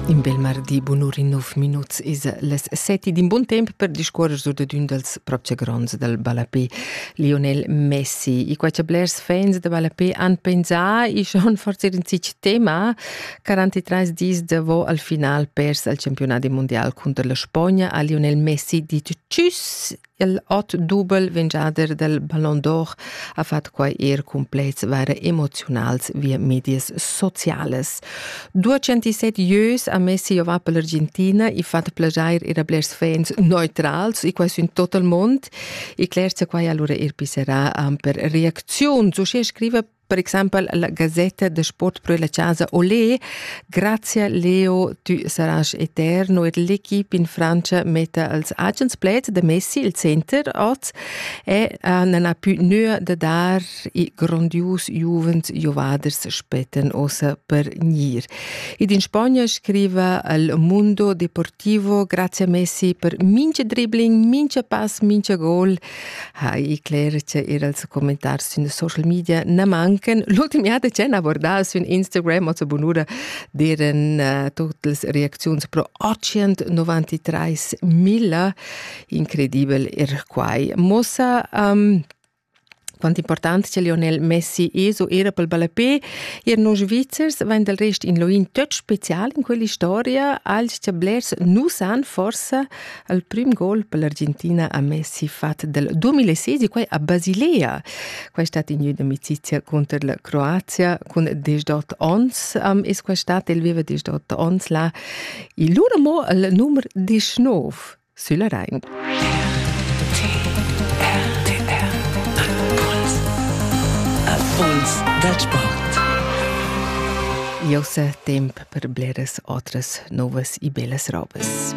In bel mardi bunur in nov minuts is les seti d'in bun temp per discuorer sur de ün dels propche gronds del ballapé, Lionel Messi. I quai che blers fans de ballapé han pensà i schon forse in sich tema, 43 dis devo al final pers al campionat mondial contro la Spagna a Lionel Messi dit tschüss Il ot dubel vingiader del Ballon d'Or ha fatg quai er cun pleds vaira emoziunals via medias sociales. 207 ieus ha mess si va per l'Argentina e fatg plagiar era blers fans neutrals e quai su in tot il mond e cler se quai allora er pisserà am per reacziun. So scrive Per exempel la gazetta de sport pro la casa Olé. Grazie Leo, tu saras eterno ed l'equipe in Francia metta als agens plets de Messi il center oz e uh, non ha più nöa de dar i grondius juvens jovaders spetten ossa per gnir. Ed in Spagna scriva al Mundo Deportivo grazie Messi per mince dribbling, mince pass, mince gol ha Icler che era els commentars sün social media na mancan l'ultim jahr de chen abordar sün Instagram o bunura deren uh, tutte le reaczioni pro 893 mila incredibel er quai mossa um, quant important che Lionel Messi eso era pel ballapé e noi Svizzers vain del rest in loin töt special in quella storia als che blers nu san forse al prim gol per l'Argentina a Messi fatg del 2016, quai a Basilea. Quai stat in amicizia contro la Croazia cun 18 ons um, es quai stat, el veva 18 ons là. Il lur amo al numero 19 sulla Rhein. Impuls dal sport. Jau sa temp per bleras otras novas e bellas robes.